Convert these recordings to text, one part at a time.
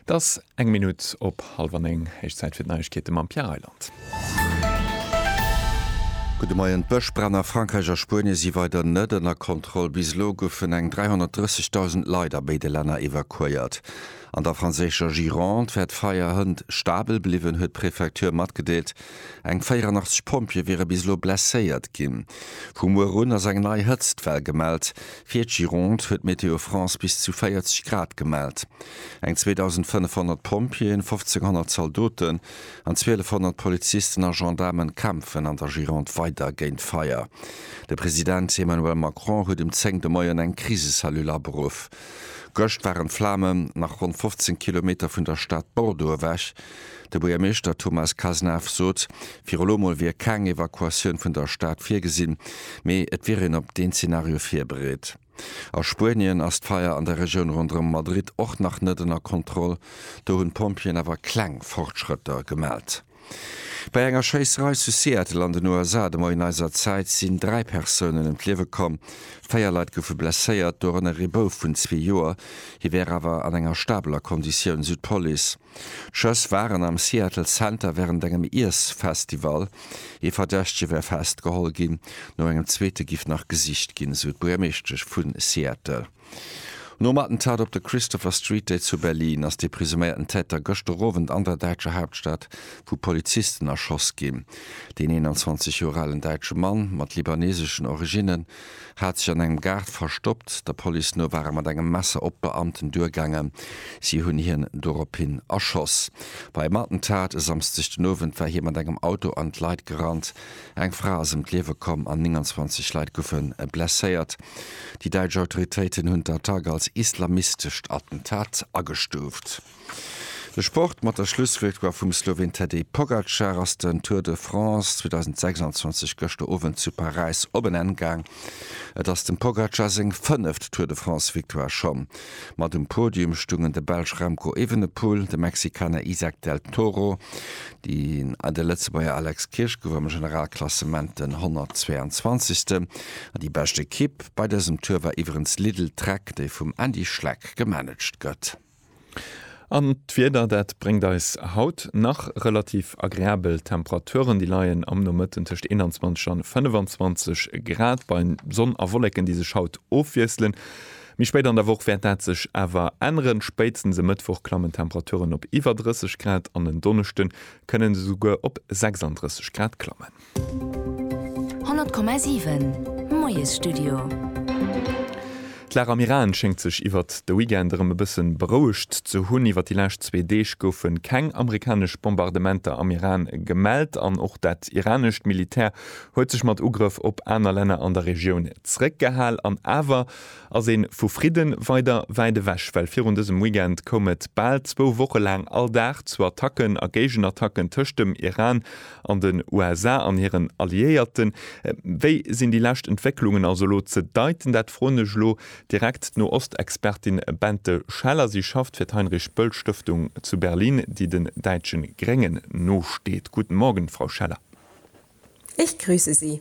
't ass eng Minutt op hallef an néng. Héich Zäit fir d'Neiegkeete mam Pierre Reyland. Gudde Moien, D'Bëschbränn a Frankräich a Spuenie si weider net ënner Kontroll. Bis elo goufen eng 330.000 Leit a béide Länner evakuéiert. An der franséischer Gironde wär d'Feier hënt stabel bliwwen, huet d'Prefecture matgedeelt. Eng 84 Pompjeeë wiere bis elo blesséiert ginn. Vu muer un ass eng nei Hëtztwell gemellt. Fir d'Gironde huet Météo France bis zu 40 Grad gemellt. Eng 2.500 Pompjeeën, 1.500 Zaldoten an 1.200 Polizisten a Gendaarmen kämpfen an der Gironde weider géint d'Feier. De President Emmanuel Macron huet um 10 de Moien eng Krisecellule aberuff. Gëscht waren d'Flamen nach ronn 15 Kilometer vun der Stad Bordeaux ewech. De Buergermeeschter Thomas Cazenave sot, fir elo mol wier keng Evakuatioun vun der Stad virgesinn, mee et wier een op deen Zenario virbereet. A Spuenien ass d'Feier an der Regioun ronderëm Madrid och nach net ënner Kontroll, do hunn d'Pompjeeën awer kleng Fortschrëtter gemellt. Bei enger Schéisserei zu Seattle an den USA de Moien eiser Zäit sinn dräi Persounen ëm d'Liewe komm, véier Leit goufe blesséiert, dorënner ee Bouf vun zwee Joer. Hie wär awer an enger stabeler Konditioun, sou d'Police. D'Schëss waren am Seattle Center wärend engem Iessfestival ee Verdächtege wär festgeholl ginn. No engem zweete giff nach gesicht ginn, esou d'Buergermeeschtesch vu Seattle. Nom Attentat op de Christopher Street Day zu Berlin ass dee presuméierten Täter gëschter Owend an der däitscher Haaptstad vu Polizisten erschoss ginn. Deen 21 Joer alen däitsche Mann mat libaneseschen Originnen hat sech an engem Gaart verstoppt. Der Police no war e mat engem Messer op d'Beamten duergaangen. Si hunn hien dorophin erschoss. Beim Attentat e Samsdeg den Owend war hie mat engem Auto an d'Leit gerannt. Eng Fra ass ëm d'Liewe komm an 29 Leit goufe blesséiert. Déi däitsch Autoritéiten hunn d'Attack als islamistescht Attentat agestuuft. De Sport mat der Schlussvictoire vum Sloween Tadej Pogacar ass den Tour de France 2026 gëschter Owend zu Paräis op en Enn gaang. Et ass dem Pogacar seng fënneft Tour de France-Victoire. Scho mat um Podium stungen de Belsch Remco Evenepoel, de Mexikaner Izack del Toro an de Lëtzebuerger Alex Kirsch gouf am Generalklassement den 122. Déi bescht Ekipp bei dësem Tour war iwwerens Lidl-Trek, déi vum Andy Schleck gemanagt gëtt. An d'Wieder, dat bréngt eis haut nach relativ agreabel Temperaturen. Déi leien am Nomëtten tëscht 21 an 25 Grad, bei Sonn a Wolleken, déi sech haut ofwiesselen. Méi spéit an der Woch wäert dat sech awer änneren, spéitstens e Mëttwoch klammen d'Temperaturen op iwwer 30 Grad an en Donneschde kënnen se souguer op 36 Grad klammen. 100,7 Moiesstudio. D'Lara Miraghen schéngt sech iwwert de Weekend erëm e bësse berouegt ze hunn. Iwwert déi lescht zwee Deeg goufe keng amerikanesch Bombardementer am Iran gemellt an och dat iranescht Militär huet sech mat Ugrëff op aner Länner an der Regioun zeréckgehal. An awer ass ee vu Fridde weider wäit ewech, well virun dësem Weekend koum et bal zwou Woche laang all Dag zu Attacken a Géigenattacken tëscht dem Iran An den USA an hiren Alliéierten? Wéi sinn déi lescht Entwécklungen also elo ze deiten? Dat froen ech elo direkt d'No-Ost-Expertin Bente Scheller. Si schafft fir d'Heinrich-Böll-Stëftung zu Berlin, déi den däitsche Gréngen nosteet. Guten Morgen, Frau Scheller. Ich grüße Sie.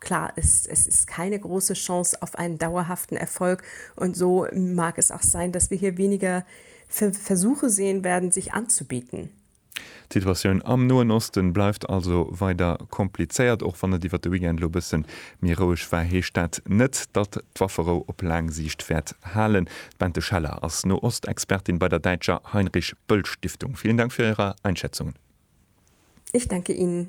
Klar ist, es ist keine große Chance auf einen dauerhaften Erfolg, und so mag es auch sein, dass wir hier weniger Versuche sehen werden, sich anzubieten. D'Situatioun am Noen Osten bleift also weider komplizéiert, och wann et iwwert de Weekend elo e bëssen méi roueg war, heescht dat net, datt d'Wafferou op laang Siicht wäert halen. D'Bente Scheller ass Noostexpertin bei der däitscher Heinrich-Böll-Stiftung. Vielen Dank fir Ärer Einschätzungen. Ich danke Ihnen.